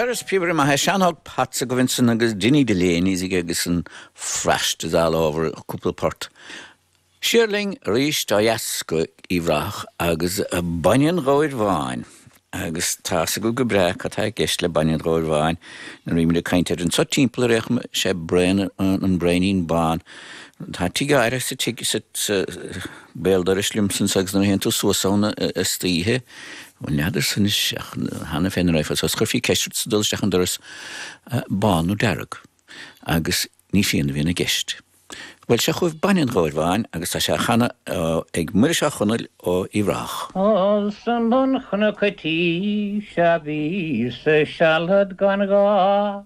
Agus is píobaire maith é Seán Óg Potts agaibh ansan agus Dinny Delaney's aige agus an Frost is all over cúpla port. Siar linn arís ó dheas go Uíbh Ráthach agus Bainne an Ghabhair Bháin. Agus tá's agaibh go breá cad tá i gceist le Bainne an Ghabhair Bháin nuair a bhímid ag caint air anso timpeall ar fhéachann sé braon an braonín bán. Tá tigh áirithe sa tigh sa Béal dorais liomsa anso agus nuair a théann tú suas ann istoíche. N'fheadar san is cheana féin an raibh fhios agat, ach chuirfí ceist ort sa dul isteach an doras bán nó dearg. Agus ní fíon a bhíonn i gceist. Bhuel, seo chugaibh Bainne an Ghabhair Bháin agus tá sé á chanadh ag Muiris Ó Conaill ó Uíbh Ráthach. Os i mbun chnoc an tí seo a bhíos-sa sealad gan ghá.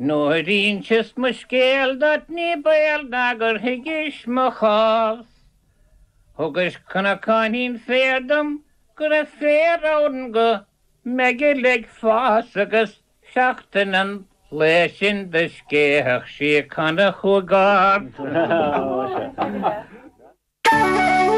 Nuair a inseas mo scéal duit ní baol ná gur thuigis mo chás, Thugais cnocáinín féir dom go raibh féar ann go meigeall ag fás, Agus seachtain an lae sin do scéitheadh sí cana chugam.